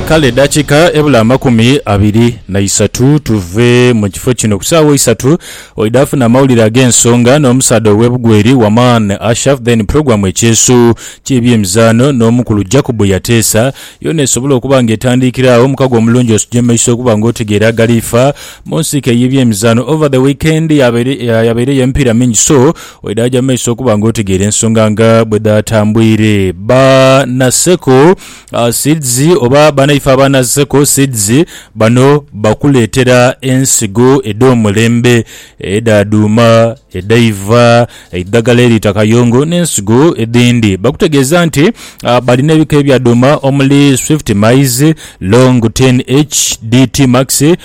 Kale dakiika ebula amakumi abiri na isatu tuve mu kifo kino, ku saagho isatu oidha funa amawulire ag'ensonga n'omusaadha ow'e Bugweri, Waman Ashaf, then pulogulaamu Ekyeeso ky'ebyemizaano n'omukulu Jacob Yateesa, yoona esobola okuba nga etandiikira agho. Omukago omulungi osujemaiso okuba nga otegeera agaliifa mu nsiike y'ebyemizaano over the weekend. Yabaireyo emipiira mingi so Oidaajo amaiso okuba nga otegeera ensonga nga bwe dhaatambwire. Ba Naseko Seeds oba banaife aba Naseko Seeds bano bakuleetera ensigo edh'omulembe edha dhuuma, edhaiva, eidhagala eriita kayongo n'ensigo edhindi. Bakutegeeza nti balina ebika ebya dhuuma omuli Swift Maize, Long 10H, DT Max,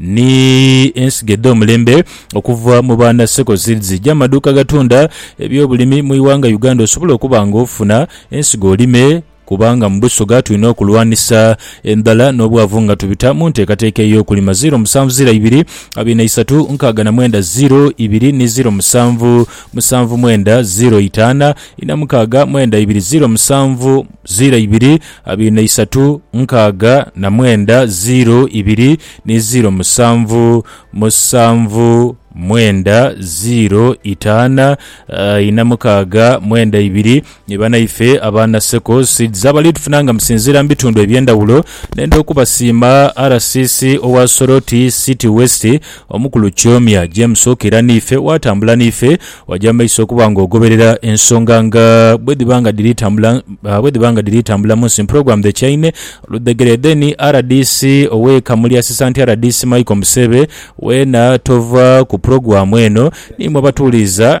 Ni ensigo edh'omulembe okuva mu baana Circle Seeds gya maduuka agatunda eby'obulimi mu ighanga Uganda osobole okuba nga ofuna ensigo olime kubanga mu Busoga tulina okulwanisa endhala n'obwavu nga tubita mu nteekateeka ey'okulima ziro musanvu ziro ibiri abiri na isatu nkaaga na mwenda ziro ibiri ni ziro musanvu musanvu mwenda ziro itaana ina mukaaga mwenda ibiri ziro musanvu ziro ibiri Abina isatu, nkaaga na mwenda, ziiro ibiri ni ziiro musanvu, musanvu, mwenda, ziiro itaana, ina mukaaga, mwenda ibiri. Ni banaife aba Naseko Seeds abali tufuna nga musinziira mu bitundu eby'endhawulo. Nenda okubasiima RCC owa Soroti City West, Omukulu Kiomya, James Okera n'ife waatambula n'ife, waja mu maiso okuba ng'ogoberera ensonga nga bwedhiba nga dhiri tambula bwedhiba nga dhiri tambula mu nsi mprogram the chaine oludhegere then rdc ow'e Kamuli Assistant rdc Michael Museebe weena tova ku program eno nimwo abatuuliiza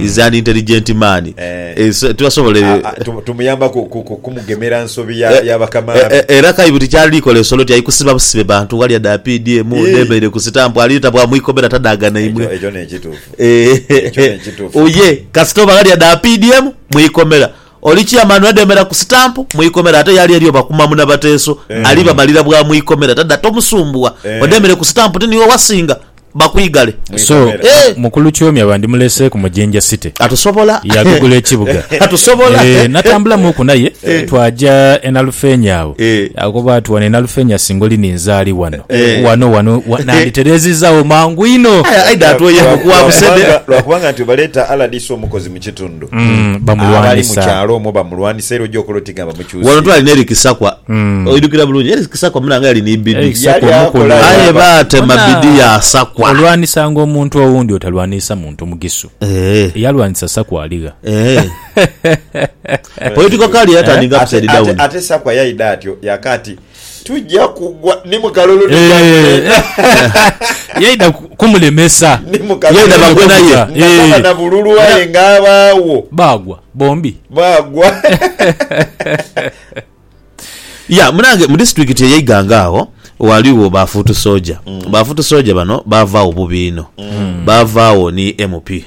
is an intelligent man eh, tibasobola ebyo Ah, ah, tu- tumuyamba ku- ku- ku- kumugemera nsobi ya Eh, ya bakama eh, be. eh, era kaibu tikyali kola esolo ti aikusiba busibe bantu ghali ada PDM Ii. nebaire ku sitampu ali tabwa mwikomera tadaga Ekyo naimwe ekyo nekituufu. Eh, Ekyo nekituufu. oye kasita oba ghali ada PDM mwikomera Oli Chairman wedemera ku stamp mwikomera ate yali eriyo bakuma muna bateeso ali bamalira bwa mwikomera tada tomusumbuwa odemere ku stamp ti niwe wasinga bakwigale. So mukulu Kyomya bandimulese ku Mujinja City yagugula ekibuga eeh natambula muku naye twaja e Nalufenya agho yakoba ati wano e Nalufenya singa oli ninzaali wano wano wano nanditereziza agho mangu inho. kitundu abali mu kyalo omwo bamulwanisa era ojja okola oti nga bamukyusiiza. Wano twali n'eri Kisakwa, oidhukira bulungi eri Kisakwa muna nga yali ni bidi aye baatema bidi ya Sakwa. Olwanisanga omuntu owundi otalwaniisa muntu Mugisu. Eyalwanisa Sakwa aligha. Political career yatandinga upside down. Ate Sakwa yaidha atyo yaka ati. tuja kugwa ni mukalulu ni gavumenti yaida kumulemesa yaida bagwe naye nakaba na bululu aye nga abaawo bagwa bombi bagwa ya munange mu disitulikiti eye Iganga agho ghaligho ba fuutu soja mm. ba fuutu soja bano bavaagho bubi inho mm. bavaagho ni MP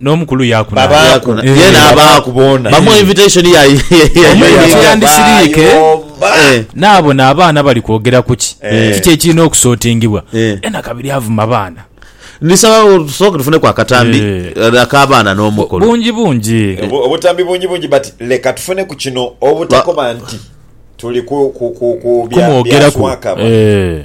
N'omukulu yaaku na. Babaaku na. Ye n'abaaku boona. Bamuwa invitation ya Omuyiga kye yandisiriike n'abona abaana bali kwogera ku ki, kiki ekirina okusootingibwa, ye na kabiri avuma baana. Ndisaba tusooke tufuneku akatambi ak'abaana n'omukulu. Bungi bungi. Obutambi bungi bungi but leka tufune ku kino obutakoba nti tuli ku, ku, ku, ku bya, bya Kumwogeraku. Swakaba. Eeh.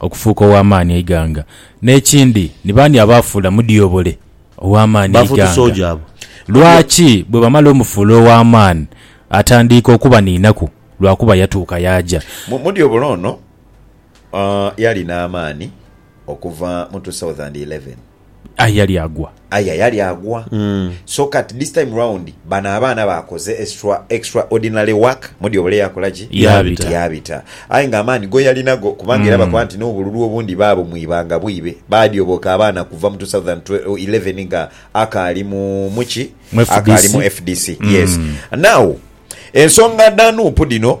Okufuuka ow'amaani eighanga. N'ekindi, ni baani abaafuula Mudyobole ow'amaani eighanga? Lwaki bwebamala omufuula ow'amaani atandiika okubaniinaku? Lwakuba yatuuka yaaja. Mudyobole ono yali n'amaani okuva mu 2011. Aye yali agwa. Aye yali agwa. So kati this time round bano abaana baakoze extra, extra ordinary work, mudyobole yakola ki? Yaabita. Yaabita. Aye nga amaani go yalina go kubanga era bakoba nti n'obululu obundi baabo mu ibanga bwibe. Baadyoboka abaana kuva mu two thousand twe, eleven nga akaali mu, mu ki? Mu FDC. Akaali mu FDC. Yes. Now, ensonga dha Nup dhino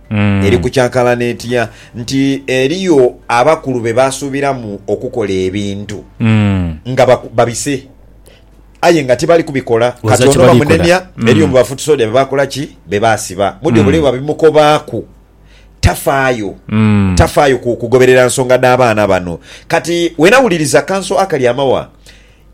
eri kucankalana etya nti eriyo abakulu be baasuubiramu okukola ebintu nga babise aye nga tibali kubikola. Kati ono bamunemya, eriyo mu Bafutisoodia be baakola ki? Be baasiba. Mu dyo bule bwe babimukobaaku, tafaayo. Tafaayo kugoberera nsonga dha baana bano. Kati wenawuliriza kanso akali amawa,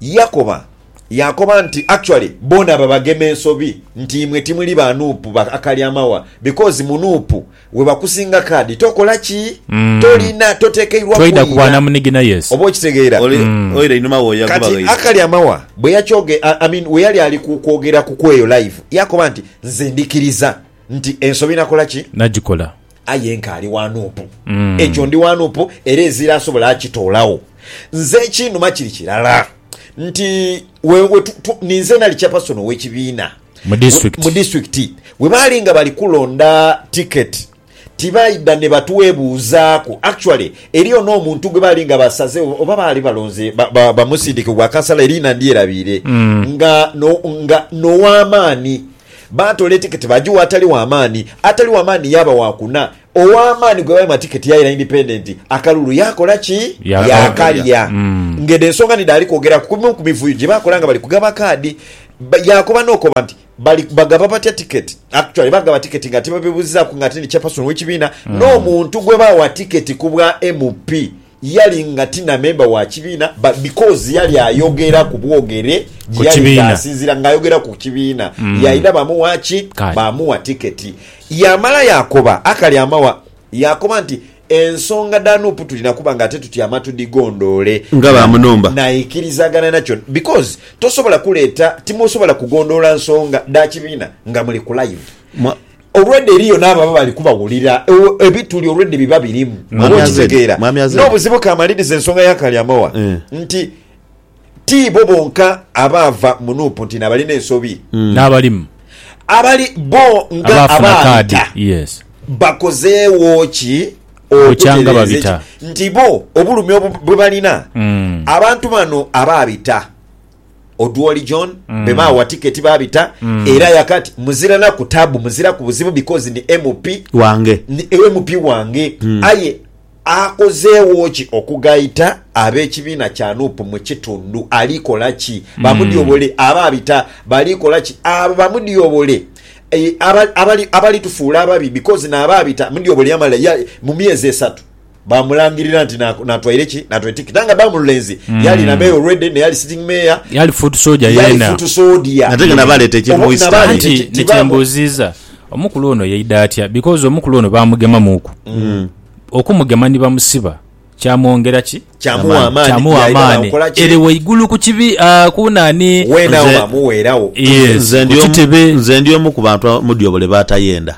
Yakoba yaakoba nti, Actually, boona abo abagema ensobi nti imwe timuli ba nup ba Akalyamawa because mu nup webakusinga card tokola ki? Tolina, totekeirwa Twaidha ku bwa kwira. namunigina, yes. Oba okitegeera? Oli oira einhuma wo yagoba Kati ghaire. Akalyamawa bwe yakyoge, I I mean, we yali ali ku kwogera ku kweyo live, yaakoba nti, Nze ndikiriza nti ensobi nakola ki? Nagikola. Aye nkaali wa nuupu. Ekyo ndi wa nuupu, era ezira asobola akitoolagho. Nze ekinuma kiri kirala nti we, we tu, tu, ninze nali chairperson ow'ekibiina Mu district. mu disitulikiti bwe baali nga bali kulonda tiketi tibaidha ne batwebuuzaaku actually eriyo n'omuntu gwe baali nga basaze oba baali balonze ba- ba- bamusindike ku bwakansala eriina ndyerabiire nga no- nga n'ow'amaani Baatoola etiketi baagigha atali wa maani. Atali wa maani yaaba wa kuna. Owa maani gwe baima tiketi yaira indipendenti, akalulu yaakola ki? Yaakalya. Ng'edho ensonga ni dhaali kwogeraku ku bimu ku mivuyo gye bakola nga bali kugaba kaadi. Yaakoba n'okoba nti, Bali bagaba batya tiketi? Actually, bagaba tiketi nga tibabebuuzizaaku ng'ate ni chairperson w'ekibiina n'omuntu gwe baawa tiketi ku bwa MP. Yali nga ti na memba wa kibiina but because yali ayogera ku bwogere gye yali nga asinziira nga ayogera ku kibiina mm. yalina bamuwa ki bamuwa tiketi yamala yakoba akali amawa yakoba nti ensonga dha nup tulina kuba nga ate tutyama tudigondoole nga bamunumba naikirizagana nakyo because tosobola kuleeta timusobola kugondoola nsonga dha kibiina nga muli ku live Olwedha eriyo n'ababa bali kubawulira ebituli olwedha ebiba birimu. Oba okitegeera? N'obuzibu kamalirize ensonga ya Kalyamowa nti ti bo bonka abaava mu Nuupu nti n'abalina ensobi. N'abalimu. Abali bo nga abaayita bakozeewo ki okutereeza nti bo obulumi bwe balina abantu bano abaabita? Odwori John mm. bebaawa tiketi babita mm. era yakati muzira naku tabu muzira ku buzibu because ni MP wange ni MP wange mm. aye akozeewo ki okugaita ab'ekibiina kya nup mu kitundu alikola ki mm. bamudyobole aba abita balikola ki abo bamudyobole e, abalitufuula ababi because naaba abita mudyobole yamala mu myezi esatu bamulangirira nti natwaire ki natwaire tikiti nga ba mululenzi mm. yali na mayor already ne yali sitting mayor yali foot soldier yena yali foot soldier nate nga nabaleta ekiri mu east anti nekyembuziza omukulu ono yaida atya because omukulu ono bamugema muku mm. okumugema ni bamusiba kyamwongera ki kyamuwa amaani ere waigulu ku kibi ah, kunani wenawo amuweerawo nze ndi omu ku bantu mudyobole batayenda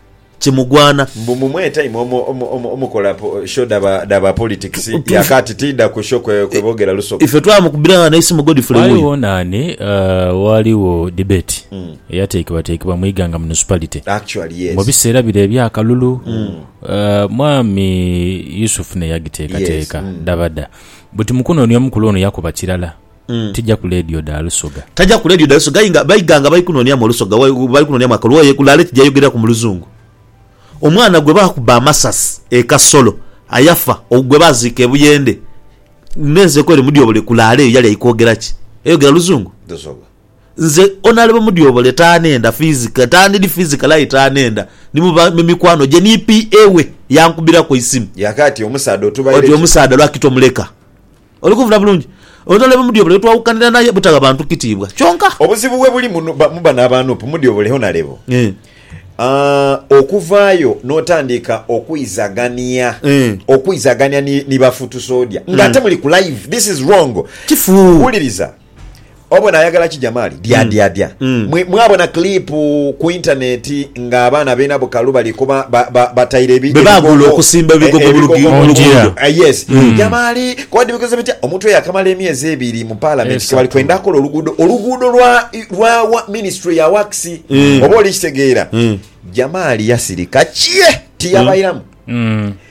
kimugwana. Mbu mumwe time omu omu kola show dhaba politics ya kati tidha ku show kwe bogera lusoga. Ife twamukubira ghano eisimu Godfrey wuyo. Ghaligho nani ghaligho debate eyatekebwa tekebwa mu Iganga Municipality mu biseera bire ebya kalulu mwami Yusuf ne yagitekateka dhabadha buti mukunoonia omukulu ono yakuba kirala. tija ku leediyo dha lusoga. Taja ku leediyo dha lusoga aye nga baighanga bali kunooniamu olusoga, bali kunooniamu akalwaye kulaale tija yogereraku mu luzungu. Omwana gwe baakuba amasasi e Kasolo ayafa, ogwo gwe baaziika e Buyende, n'ensi ekoire Mudyobole kulaale eyo yali aikwogera ki? Eyogera luzungu? Lusoga. Nze Onalebo Mudyobole taanhenda fizika, taandidi fizikali aye taanhenda. Ni mu ba, mu mikwano gye ni PA we yankubiraku eisimu. Yaaka ati, Omusaadha otubaire ki? Oti omusaadha lwaki tomuleka? Oli kuvuna bulungi? Obutale bwe Mudyobola ye twawukanira naye butagha bantu kitiibwa kyonka. Obuzibu we buli mu bano aba Nup, Mudyobola e Honalebo, okuvaayo n'otandika okwizagania okwizagania ni bafuutusoodya ng'ate muli ku live. This is wrong. Wuliriza. Obona ayagala ki Jamali? Dyadyadya. Mwe mwabona clip ku internet nga abaana bena bukalu bali kuba ba- ba- bataire ebi- Bebagula ebigogo- okusimba eh, ebigogo mu lugi- mu luguudo. Mungira. Eh, yes. Jamali kodi bikoze bitya omuntu oyo akamala emyezi ebiri mu parliament Esatu. kebali kwenda akola oluguudo oluguudo lwa lwa wa- ministry ya wax oba olikitegeera Jamali yasirika kye tiyabairamu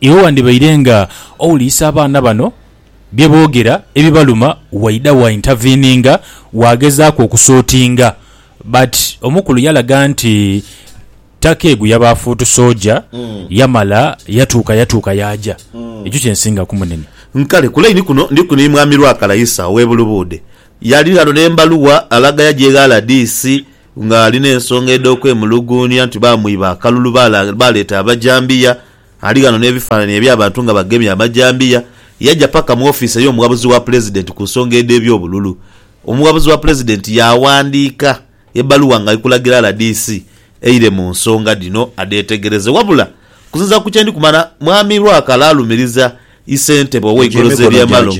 Iwe wandhibaire nga owulirisa abaana bano bye boogera ebibaluma waidha wa intaviininga waagezaaku okusotinga but omukulu yalaga nti Takeegu yaba afuutu soja yamala yatuuka yatuuka yaaja. Ekyo kye nsingaku Munene. Nkale ku laini kuno ndiku ni Mwami Lwakalaisa ow'e Bulubuudhe. Yali ghano n'embaluwa alaga yaja eghala DC. Ng'ali n'ensonga edh'okwemuluguunia nti baamwiba akalulu, baaleeta abajambiya. Ali ghano n'ebifaananie eby'abantu nga bagemye amajambiya. Yaja paka mu ofiisi ey'omughabuzi wa Pulezidenti ku nsonga edh'eby'obululu. Omughabuzi wa Pulezidenti yaawandiika ebbaluwa ng'ali kulagira rdc eire mu nsonga dhino adheetegereze. Wabula okusinziira ku kye ndi kumanya, Mwami Lwakala alumiriza Isentebe ow'eikulu z'ebyamalo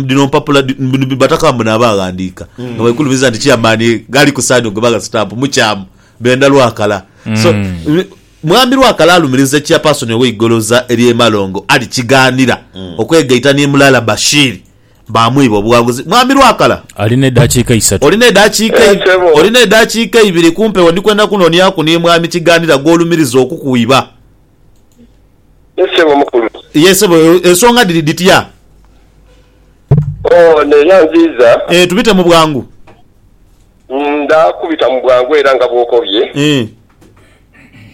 dhino mpapula dhino Bataka mbu n'abaaghandiika nga baikulumiza nti Chairman ghali ku saini ogwe bagha sitampu mukyamu benda Lwakala. So Mwami Lwakala alumiriza Chairperson ow'eigoloza ery'emalongo Ali Kighanira okwegaita ni Mulala Bashir baamwiba obuwanguzi. Mwami Lwakala, Alina edaakiika isatu. olina edaakiika Yes, ssebo. olina edaakiika ibiri ku mpewo ndi kwenda kunonyaku ni Mwami Kighanira gw'olumiriza okukwiba. Ye ssebo omukulu. Ye ssebo, ensonga dhiri dhitya? Oh, neera nziiza. Eh, tubite mu bwangu. Ndha kubita mu bwangu era nga bw'okobye. Eh.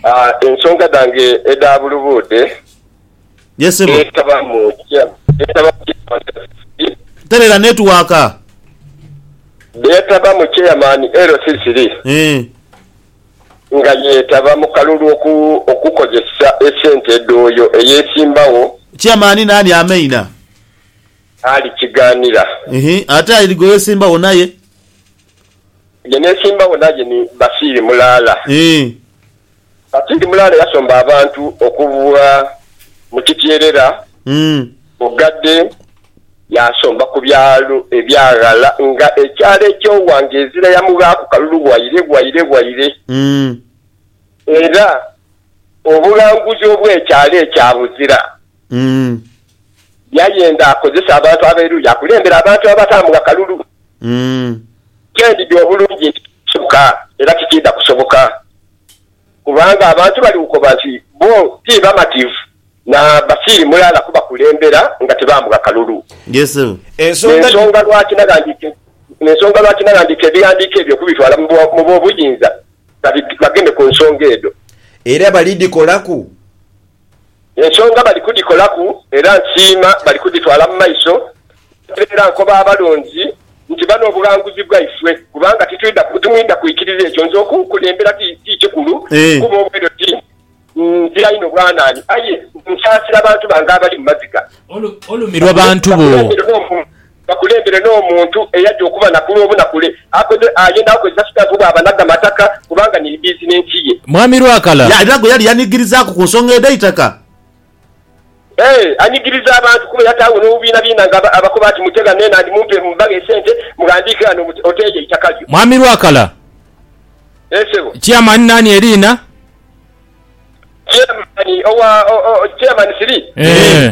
Ah, ensonga dhange edha bulubuudhe. Ye ssebo. Dheetaba mu kya, dheetaba mu kya. Terera netiwaaka. Dheetaba mu Chairman LC3. Eh. nga yeetaba mu kalulu okukozesa esente edhooyo eyeesimbagho. Chairman naani ameina? Ali Kighanira. Ehe ate ali gwewesimbawo naye? Gye neesimbawo naye ni Basiiri Mulaala. Eeh. Basiiri Mulaala yasomba abantu okuva mu kityerera, bugadde. Yaasomba ku byalo ebyaghala nga ekyalo eky'owa nga ezira yamughaaku kalulu waire bwaire bwaire. Era obughanguzi obw'ekyalo ekyo abuzira. Yayenda akozese abantu ab'eruuyi akulembere abantu abataamugha kalulu. Kyendidhi obulungi nti, Tikisoboka era tikiidha kusoboka. kubanga abantu bali kukoba nti bo ti bamativu na basiiri mulala kubakulembera nga tibaamugha kalulu. N'ensonga lwaki naghandiika ebighandiiko ebyo okubitwala mu b'obuyinza bageme ku nsonga edho. Era balidhikolaku Ensonga bali kudhikolaku era nsiima bali kudhitwala mu maiso era nkoba abalonzi nti bano obughanguzi bwaifwe kubanga timwidha kwikiriza ekyo nze okunkulembera ti kikulu kuba obweedo ti nzira inho bwanaani aye nsaasira bantu bange abali mu maziga. Olumirwa bantu bo. Bakulembere n'omuntu eyaja okuba na kulwo bunakule akoze aye nawe kozesa sitampu bwaba na gamataka kubanga ni bizinensi ye. Mwami Lwakala. Ye alina gwe yali yanigirizaaku ku nsonga edh'eitaka? Ee, anigiriza abantu kuba yataagho n'obubiinabiina nga abakoba ati mute ghano enandhi mumpe mubaghe esente mughandiike ghano muti oteeyo eitaka lyo. Mwami Lwakala. Ee ssebo. Chairman naani eriina? Chairman owa, oh, oh, Chairman siri. Ee.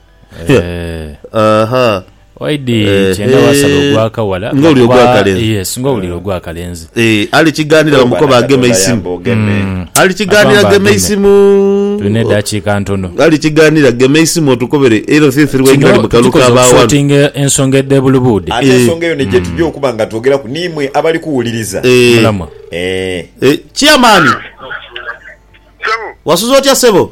Eh, Aha. Waidi Eh, kyenda eh. wasala ogw'akawala. Nga oli ogw'akalenzi. Yes, nga owulira ogw'akalenzi. Eh, ali kiganira bamukoba agema eisimu. Mm. Ali kiganira Agamba gema ageme. eisimu. Tulina eddakiika ntono. Ali kiganira gema eisimu otukobere era thiri thiri waingira Kino mu kalu tukoze ka baawano. okusotinga ensonga edh'ebulubuudi. ate ensonga eyo neje tujja okuba nga twogeraku niimwe abali kuwuliriza Eh. Mulamwa. Eh. Eh, chairman. Wasuze otya sebo?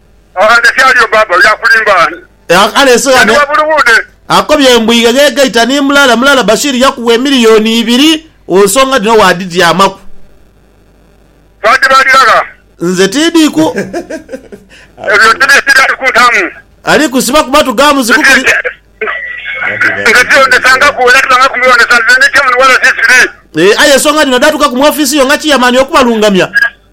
Ghande kyaliyo baaba oyo akulimba ani? Kale ensi ghano akobye mbu ighe gaita ni mulala mulala Bashir yakuwa emiliyoni ibiri ku nsonga dhino waadhityamaku. Twadibalira gha? Nze tiidhiku. Ebyo tibisiba ali kuntamu. Ali kusiba kuba tugaamu zikukuli. Nze tiwondesangaku era tibangaku mbiwondesa nze ndi chairman wa RCC. Aye ensonga dhino dhaatuka ku mu ofiisi yo nga chairman oku balungamya.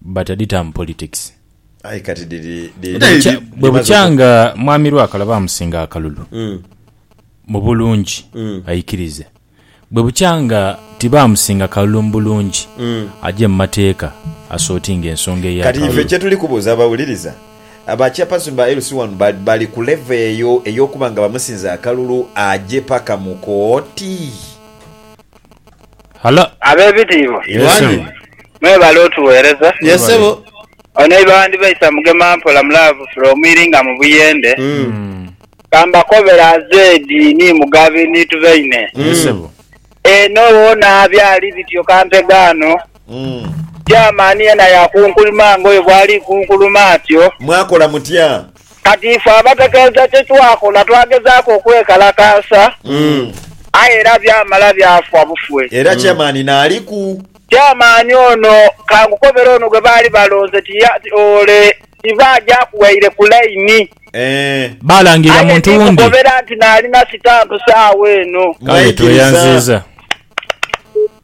but aditamu politics. Aye kati dhiri dhiri bwebukya nga mwami lwakala bamusinga akalulu mubulungi aikirize bwebukya nga tibamusinga kalulu mubulungi aje mumateeka asotinge ensonga eya kalulu. Kati ife kyetuli kubuuza abawuliriza ba chairperson ba LC wano bali ku level eyo eyokuba nga bamusinze akalulu aje paka mukooti? Halo. Abebitiibwa Yes sebo. mwebale otuwereza. Yes sebo. Ono iba wandibaisa mugema mpola mu love from iringa mu buyende. Kambakobere azeedi ni mugabi ni tubaine. Yes sebo. Eno wona byali bityo kampegaano. Chairman yena yakunkulima nga oyo bwali kunkuluma atyo. Mwakola mutya? Kati ife abategeeza kye twakola twagezaaku okwekalakaasa, aye era byamala byafa bufwe. Era Chairman naaliku. Chairman ono ka nkukobere ono gwe baali balonze ti ya, ti ole, tiva aja akuwaire ku line. Baalangirira Aye muntu wundi. ndikukobera nti naalina sitampu saagho eno. Kale tweyanziiza.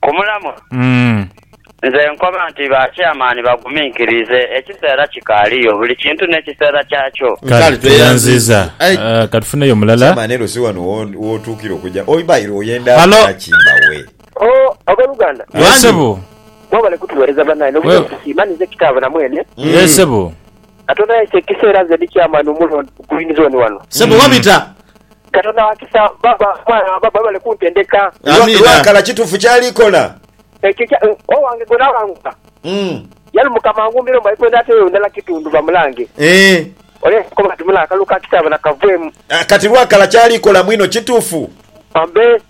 Ku mulamwa, nze nkoba nti ba Chairman baguminkirize, ekiseera kikaaliyo, buli kintu n'ekiseera kyakyo. Kale tweyanziza. Katufuneyo mulala. Chairman elo si wano wotuukira okuja oba ela oyenda kola ki mbawe. Ooh aboluganda. Mwebale kutuwereza banaye nobutetusiima ninze kitaabwe na mwene. Katonda yaisa ekiseera nze ndi chairman omulonde ku Green Zone wano. Sebo wabita. Katonda wakisa baba mwana wa baba webale kuntendeka. Amina. Lwakala kitufu kyali kola. Ekyo kya owange gwe nawangula yali mukama angumbire mbu aikoyo nateyo ndala kitundu bamulange. Ole yakoba ati mula akalu ka kitaaba nakavwemu. Kati lwakala kyali kola mwino kitufu. Ambe.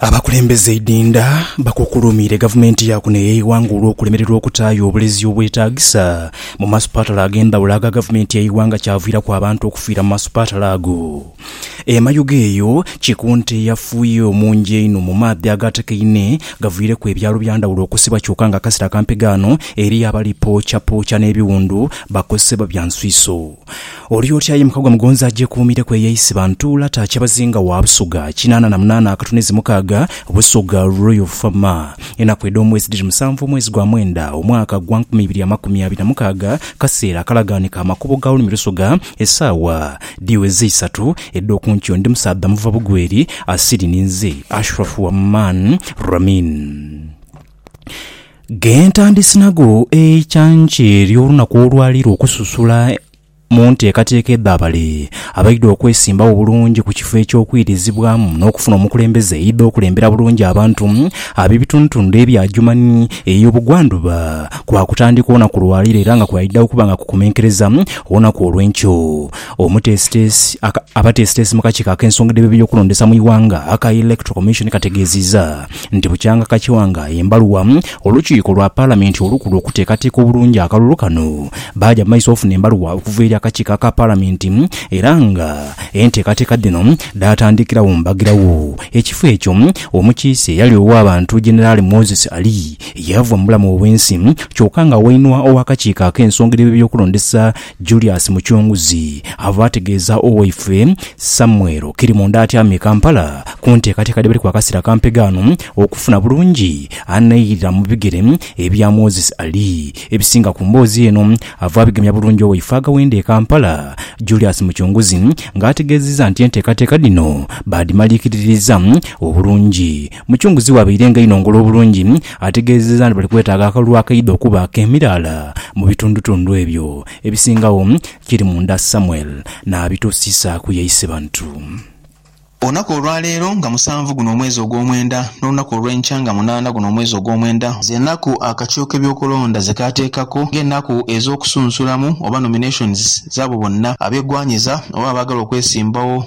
Abakulembeze eidinda bakukulumiire gavumenti ya kuno ey'eighanga olw'okulemererwa okutaayo obulezi obwetaagisa mu masupatala ag'endhawulo aga gavumenti y'eighanga kyaviiraku abantu okufiira mu masupatala ago. E Mayuge eyo kiku nte eyafuye omungi einho mu maadhi agaatekaine gaviireku ebyalo bya ndhawulo okusibwa kyoka nga akasera kampi ghano eriyo abali pookyapokya n'ebiwundu bakozesebwa bya nswiso. Oli otya ye mukagwa mugonzi agyekuumireku eyeisiba ntuula ta Kyabazinga wa Busoga kinaana na munaana akatunezi mukaaga Busoga Royal Fama Enaku edh'omwezi dhiri musanvu omwezi gwa mwenda omwaka gwa nkumi ibiri amakumi abiri na mukaaga Kaseera akalagaanike amakubo ga Lulimi Lusoga Esaawa dhiweze isatu edh'oku nkyo Ndi musaadha muva Bugweri asiri ninze Ashraf Waman Ramin. Ghentandisi nagho eikyankye ly'olunaku olwali lwokususula mu nteekateeka edh'abale abaidha okwesimbagho obulungi ku kifo eky'okwirizibwamu n'okufuna omukulembeze eidha okulembera bulungi abantu ab'ebitundutundu ebya Adjumani ey'obugwandhuba kwakutandika olunaku lwaleero era nga kwaidha okuba nga kukomenkereza olunaku olwenkyo. Omuteesiteesi Abateesiteesi mu kakiiko ak'ensonga dh'ebyokulondesa mu ighanga aka Electoral Commission kategeezizza nti bukyanga Kakiwanga ye mbaluwa olukiiko lwa Palamenti olukulu okuteekateeka obulungi akalulu kano baaja mu maiso ofuna embaluwa okuva eri akakiiko aka Palamenti era nga enteekateeka dhino dhaatandikirawo mbagirawo. Ekifo ekyo omukiise eyali ow'abantu Generali Moses Ali yaava mu bulamu obw'ensi kyoka nga wainwa ow'akakiiko ak'ensonga edh'ebyokulondesa Julius Mucunguzi ava ategeeza Owaife Samuel Kirimunda atyamye e Kampala ku nteekateeka dhebali ku akasera akampega ano okufuna bulungi anairira mu bigere ebya Moses Ali. Ebisinga ku mboozi eno ava abigemya bulungi Owaife Agawenda e Kampala Julius Mucunguzi nga ategeziza nti enteekateeka dhino baadhimalikiriririza obulungi Mucunguzi we abairenga inho ngulu obulungi ategeezezza nti bali kwetaaga akalulu akaidha okuba ak'emiraala mu bitundutundu ebyo. Ebisingagho kiri munda Samuel n'abituusiisa ku ye Isebantu. Olunaku olwa leero nga musanvu guno omwezi ogw'omwenda, n'olunaku olw'enkya nga munaana guno omwezi ogw'omwenda, z'enaku akakiiko k'ebyokulonda ze kaateekaku ng'enaku ez'okusunsulamu oba nominations z'abo bonna abegwanyiza oba abaagala okwesimbawo.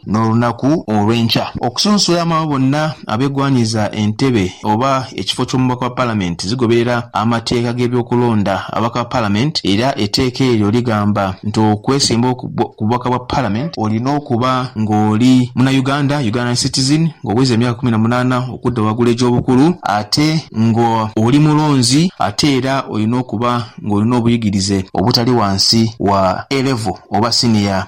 n'olunaku olw'enkya. Okusunsula abo bonna abegwanyiza entebe oba ekifo ky'omubaka wa Palamenti zigoberera amateeka g'ebyokulonda ababaka ba Palamenti era eteeka eryo ligamba nti okwesimbawo ku bubaka bwa Palamenti olina okuba ng'oli Munayuganda, Ugandan citizen, ng'oweza emyaka kumi na munaana okudda wagulu egy'obukulu ate nga oli mulonzi ate era olina okuba ng'olina obuyigirize obutali wansi wa A-Level oba siniya.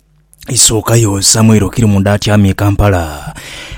Isookayo Samuel Okirimunda atyama e Kampala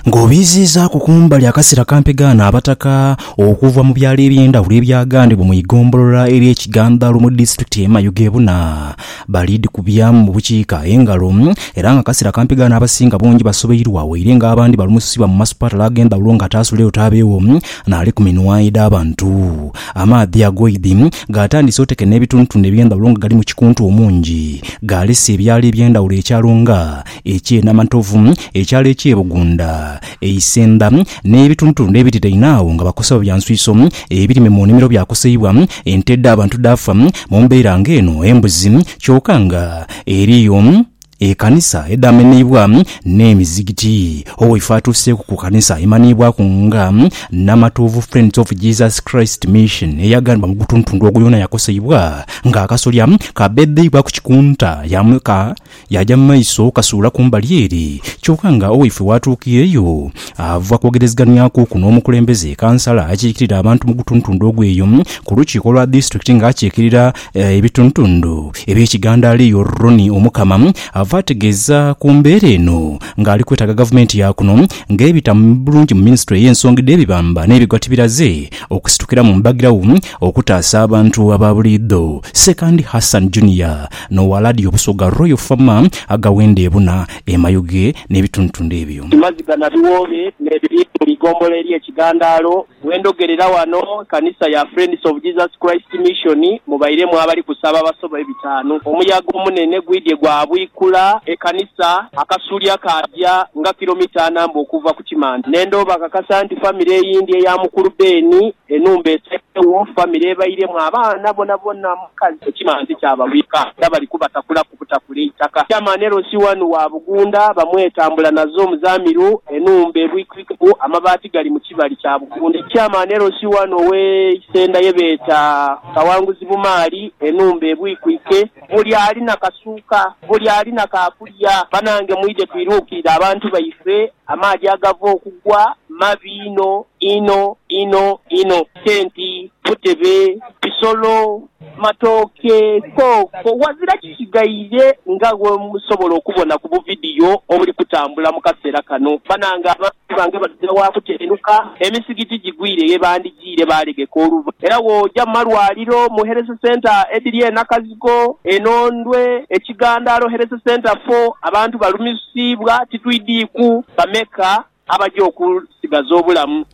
ng'obiiziizaaku kumbali akasera kampi gaana abataka okuva mu byalo eby'endhawulo ebyagandibwa mu igombolola ery'e Kigandhalo mu disitulikiti y'e Mayuge buna balidhikubyamu mu bukiika engalo era nga akasera kampi gaana abasinga bungi basobeirwa waire nga abandi balumusibwa mu masupatala ag'endhawulo nga ataasuleyo taabeewo naali ku minwaedh'abantu. Amaadhi agoidhi gaatandise oteka n'ebitundutundu eby'endhawulo nga galimu kikuntu omungi. Gaalese ebyalo eby'endhawulo ekyalo nga, eky'e Namantovu, ekyalo eky'e Bugunda, e Isendha, n'ebitundutundu ebiriraine agho nga bakosebwa bya nswiso, ebirime mu nimiro byakoseibwa, ente edh'abantu dhaafa mu mbeera ng'eno, embuzi kyoka nga eriyo. Ekanisa edhamenheibwa n'emizigiti. Owaife atuuseeku ku kanisa emanhiibwaku nga Namatovu Friends of Jesus Christ Mission eyaghanibwa mu gutuntundu ogwo yoona yakoseibwa nga akasolya kabeebeibwa ku kikunta yaaja mu maiso kasuula ku mbali ere kyoka nga Owaife waatuukiireyo ava kwogerezeghanyakuuku n'omukulembeze, Kansala, akiikirira abantu mu gutuntundu ogwo eyo ku lukiiko lwa disitulikiti nga akiikirira Ebitundutundu eby'ekigandaali Yuruni Omukama ava ategeeza ku mbeera eno nga ali kwetaaga gavumenti ya kuno nga ebita bulungi mu minisitule ey'ensonga edh'ebibamba n'ebigwatibiraze okusitukira mu mbagirawo okutaasa abantu aba buliidho Ssekandi Hassan Junior n'owa Laadiyo Busoga Royal Fama agawenda ebuna e Mayuge n'ebitundutundu ebyo. Amaziga na biwoobe n'ebiri mu igombola ery'ekigandaalo Bwe ndhogerera ghano Kanisa ya Friends of Jesus Christ Mission, mubairemu abali kusaba abasoba ebitaanu. Omuyaga omunene gwidhye gwabwikula ekanisa, akasulya kaagya nga kilomita ana mbu okuva ku kimante. Ne ndhooba akakasa nti famire eyindi eya mukulu Ben, enhumba esaidhegho, famire ebairemu abaana bonabona, mukazi, ekimante kyababwika era bali kubatakula. okutakula eitaka. Chairman LC wanu wa Bugunda bamweta Mbulanazo Muzamiru, enhumba ebwikirikeku amabaati gali mu kibali kya Bugunda. Chairman LC wanu owe Isenda yebeeta Kawanguzi Bumaali, enhumba ebwikwike. Buli ali na kasuuka, buli ali na ka kulya. Banange mwidhe twirukirire abantu baife, amaadhi agava okugwa mabi inho inho inho inho. Tenti, butebe, bisolo, Matooke koko ghazira kisigaire nga bwemusobola okubona ku buvidiyo obuli kutambula mu kaseera kano. Banange abantu bange batutera wa kutendhuka, emisigiti gigwire ye bandhigiire baalegeka oluva era bw'oja mu malwaliro, mu Health Centre edhiri e Nakazigo, e Nondwe, e Kigandaalo Health Centre fo abantu balumisibwa titwidhiiku bameka. Abaja okunsigaza obulamu.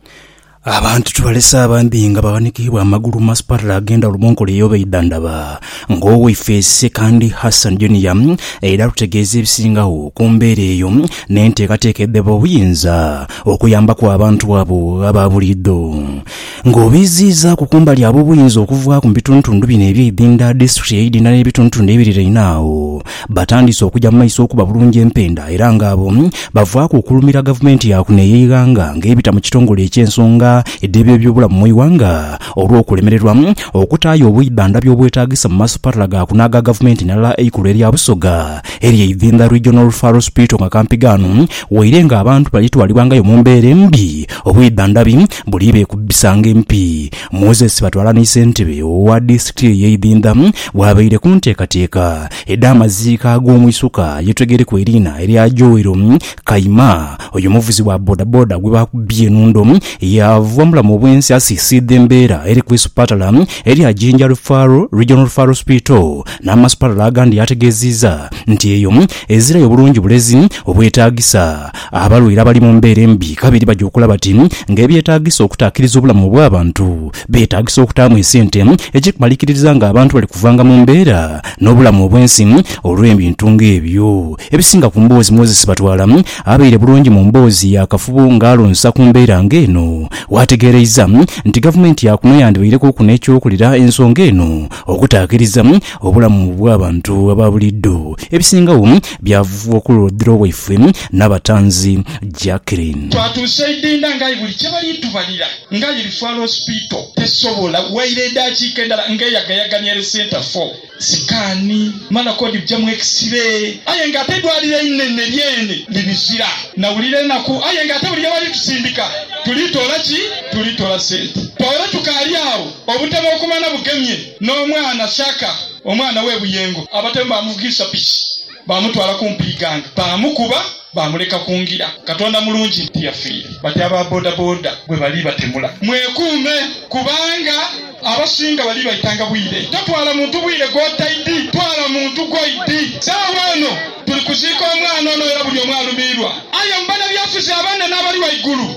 Abantu tubalese abambi nga baghanikibwa amagulu mu masipatala agenda Rubonko Lea oba Idandaba ng'owaife Ssekandi Hassan Junior era atutegeeza ebisingagho ku mbeera eyo n'enteekateeka edheba obuyinza okuyambaku abantu abo aba buliidho. Ng'obiiziizaaku kumbali agho obuyinza okuvaaku mu bitundutundu bino eby'eidhindha, disiturikiti y'eidhindha n'ebitundutundu ebiriraine agho batandise okuja mu maiso okuba bulungi empenda era nga abo bavaaku okulumira gavumenti ya kuno ey'eighanga ng'ebita mu kitongole eky'ensonga edh'eby'ebyobulamu mu ighanga olw'okulemererwa okutaayo obwidhandhabi obwetaagisa mu masupatala ga kuno aga gavumenti n'alala eikulu erya Busoga ery'eidhindha Regional Referral Hospital nga kampi ghano waire ng'abantu balitwalibwangayo mu mbeera embi obwidhandhabi Buli beekubbisanga empi, Moses batwala ni ssentebe owa disitulikiti ey'eidhindha bw'abaire ku nteekateeka edh'amaziika ag'omwisuka ye Twegereku eriina erya Joel Kayima. Oyo muvuzi wa bodaboda gwe baakubbye enhundo yaava mu bulamu obw'ensi asiisiidha embeera eri ku isupatala erya Jinja Referral Regional Referral Hospital n'amasupatala agandi yaategeeziiza nti eyo ezirayo bulungi bulezi obwetaagisa. Abalwaire abali mu mbeera embi kabiri baja okulaba ti ng'ebyetaagisa okutaakiriza obulamu obw'abantu beetaagisa okutaamu esente ekikumalikiririza ng'abantu bali kuvanga mu mbeera n'obulamu obw'ensi olw'ebintu ng'ebyo. Ebisinga ku mboozi Moses Sibatwala abaire bulungi mu mboozi yaakafubo ng'alonsa ku mbeera ng'eno, waategeereiza nti gavumenti yaakuno yandibaireku ku n'ekyokulira ensonga eno Okutaakiriza obulamu bw'abantu aba buliidho ebisingagho byavugwa ku lwoodhiro waifwe Nabatanzi Jacqueline. Twatuuse Idinda nga aye buli kye bali itubalira nga aye Lifwaalo Hospital tesobola. Waire edaakiika endala nga eyagayagania ere Centre for sikaani mala kodi bujamu X-ray aye nga ate eidwaliro einhenhe lyeene libizira. Nawulira enaku aye nga ate buli ye bali tusindika tulitoola ki? Tulitoola sente. Twaweera tukaali agho Obutebe okumana bugemye n'omwana Shaka, omwana w'e Buyengo. Abatemu baamuvugisa piki baamutwala kumpi Iganga, baamukuba baamuleka ku ngira. Katonda mulungi tiyafiire bati aba bodaboda bwe bali batemula. Mwekuume kubanga abasinga bali baitanga bwire. Totwala muntu bwire gw'otaidhi, twala muntu gw'oidhi. Saagho eno tuli kuziika omwana ono era buli omu alumiirwa. Aye mu banabyafuzi abanene abali ghaigulu,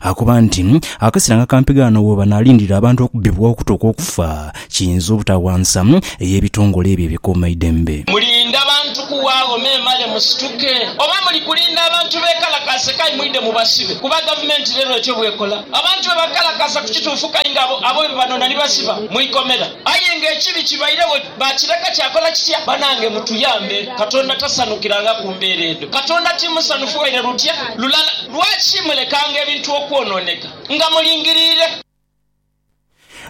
Akoba nti, Akasera nga kampi ghano we banaalindirira abantu okubbibwa okuta okw'okufa kiyinza obutawansa ey'ebitongole ebyo ebikuumaidembe. Mulinda bantu kuwaagho memale musituke? Oba muli kulinda abantu beekalakaase kayi mwidhe mubasibe? Kuba gavumenti reero etyo bw'ekola. Abantu bwe bakalakaasa ku kituufu kayi nga abo abo be banoona ni basiba mu ikomera. Aye ng'ekibi kibairegho. Baakireka kyakola kitya? Banange mutuyambe. Katonda tasanukiranga ku mbeera edho. Katonda ti musanhufu waire lutya lulala. Lwaki mulekanga ebintu okwonooneka nga mulingiriire?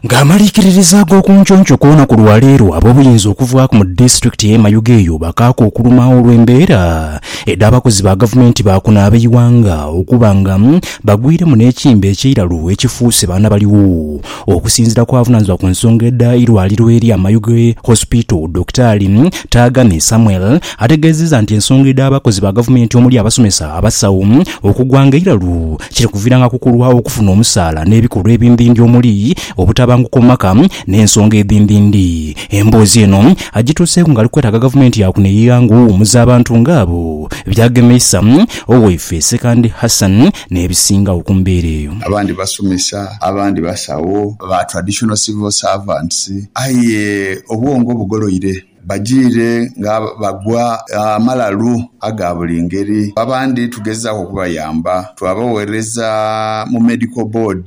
Ng'amaliikiririza ag'oku nconco ku lunaku lwa leero, ab'obuyinza okuvaaku mu disitulikiti y'e Mayuge eyo bakaaku okuluma olw'embeera edh'abakozi ba gavumenti ba kuno ab'eighanga okuba nga bagwiremu n'ekimbe eky'eiralu ekifuuse baana baligho Okusinzira ku avunanizibwa ku nsonga edha irwaliro erya Mayuge Hospital Dokitaali Taagane Samuel ategezeeza nti ensonga edha bakozi ba gavumenti omuli abasomesa, abasawo okugwa nga eiralu kiri kuviranga ku kulwa okufuna omusaala n'ebikolwa ebindindi omuli obutabanguko mu maka n'ensonga edhindindi. Emboozi eno agituuseeku nga ali kwetaaga gavumenti ya kuno eyigha nga owumuza abantu nga abo byagemeisa Oweiffe Ssekandi Hassan n'ebisingagho ku mbeera eyo. Abandi basomesa, abandi basawo, ba traditional civil servants, aye obwongo bugoloire, bajiire nga bagwa amalalu aga buli ngeri. Abandi tugezaaku okubayamba, twabaweereza mu medical board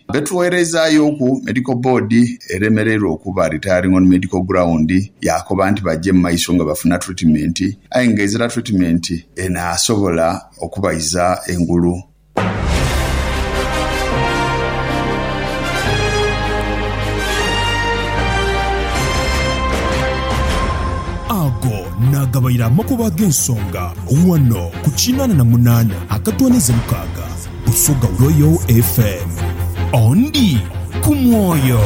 Betuwereizaayoku Medical Board eremereirwa okuba retiring on medical ground yaakoba nti baje mu maiso nga bafuna treatment aye nga ezira treatment enaasobola okubaiza engulu. Ago naagabaire amakubo ag'ensonga ghano ku kinaana na munaana akatoonheze mukaaga. Busoga Royal FM. Ondi ku mwoyo.